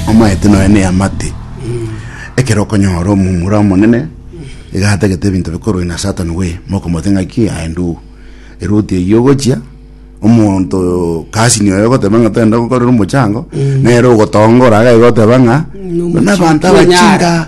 Omaete nonya ne amate. Ekero okonyora omomura omonene, iga atagete ebinto bikorwe na Satan we, mokomote ng'aki aye nduu. Eruti eyio ogochia, omonto cousin oye ogoteba ng'a togende gokorera omochango, nere ogotongora iga iga oteba ng'a, Nomochi- abanto abachinga.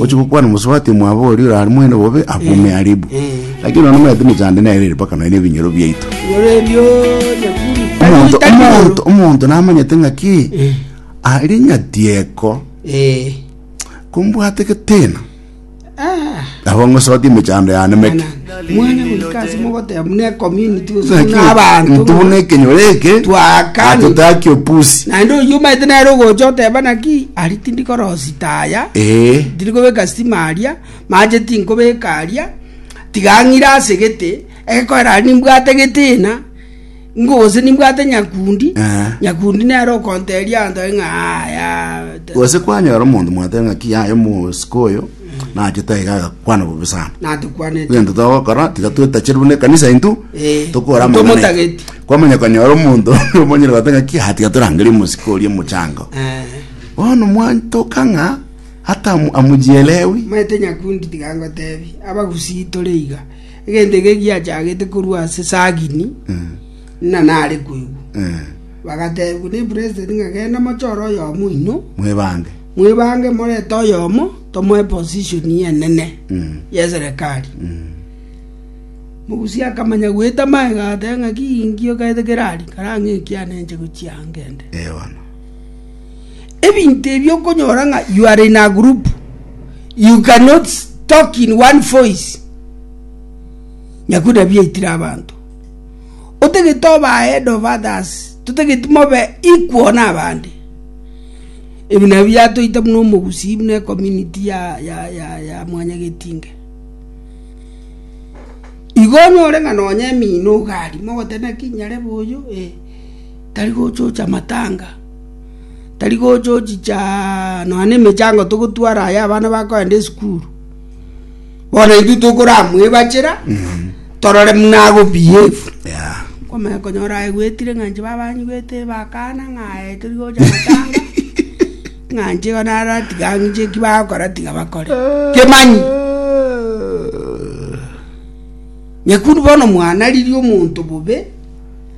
Ochia gokwana omosubati mwabo oria orarimoire bobe abume aribu. Lakini nonya omanyete emechando ende nero ere mpaka nonya na ebinyoro biaito. Omonto, omonto, omonto namanyete ng'aki aria nyatieko kombwate geteena. Nabo ng'osotie emechando yanemeke. Mwana goika ase mogoteba buna ecommunity gose Naki buna abanto intwe buna ekenyoro eke Twakani. atotaki opusi naende oyio omaete nere ogocha oteba naki ari tindi korosi taya ee tindi kobeka stima aria mache tinkobeka aria tiga ang'ire asegete egekoera aria nimbwate egetina Gose nimbwate nyakundi, nyakundi nere okonteria antoe ng'a aya. Gose kwanyora omonto mwateba ng'a ki yaye omosike oyo nachete aiga agakwana bobe sana Natokwanete. egento togokora tiga twetachire buna ekanisa intwe Eh, tokora amang'ana ntomotageti. aitwe. kwamanya konyora omonto omonyene gote ng'a ki "Ah, tiga torangerie omosike oria omochango Eh, bono mwantoka ng'a hata amu- amujielewi maete nyakundi tiga ngotebi abagusii tore iga Egento eke giachagete korwa ase Sagini, ng'a nare koigwa. Eh, Bagateebigwa nepresident ng'a genda mochore oyomo oino, mwebange. mwebange morete oyomo tomoe position enene Mm. y'eserekari. Mm. Mogusi akamanya goeta magega agateba ng'a ki ngio kaete kerari karang'e ekiana enche gochia angende. Eh, bono. Ebinto ebi okonyora ng'a you are in a group, you cannot talk in one voice. Nyakuda biaitire abanto. Otagete obe ahead of others, totagete mobe equal na abande. Ebi nabio biatoite buna omogusii buna ecommunity ya, ya, ya, ya mwanyagetinge. Igo onyore ng'a nonya emino iga aria, mogoteba naki nyarebe oyo, eh. tari gochocha amatanga, tari gochochicha nonya nemechango togotwara aye abana bakoenda esukuru. Bono intwe tokoramwebachera torore buna agobehave. Yeah. Kwamanya konyora aye gwetire ng'a inche baba anyigwete bakana ng'a aye tari gocha amatanga, ng'a inche igo naratiga ang'e inche eki bagokora tiga bakore. Kemanyi, nyakundu bono mwana riria omonto bobe.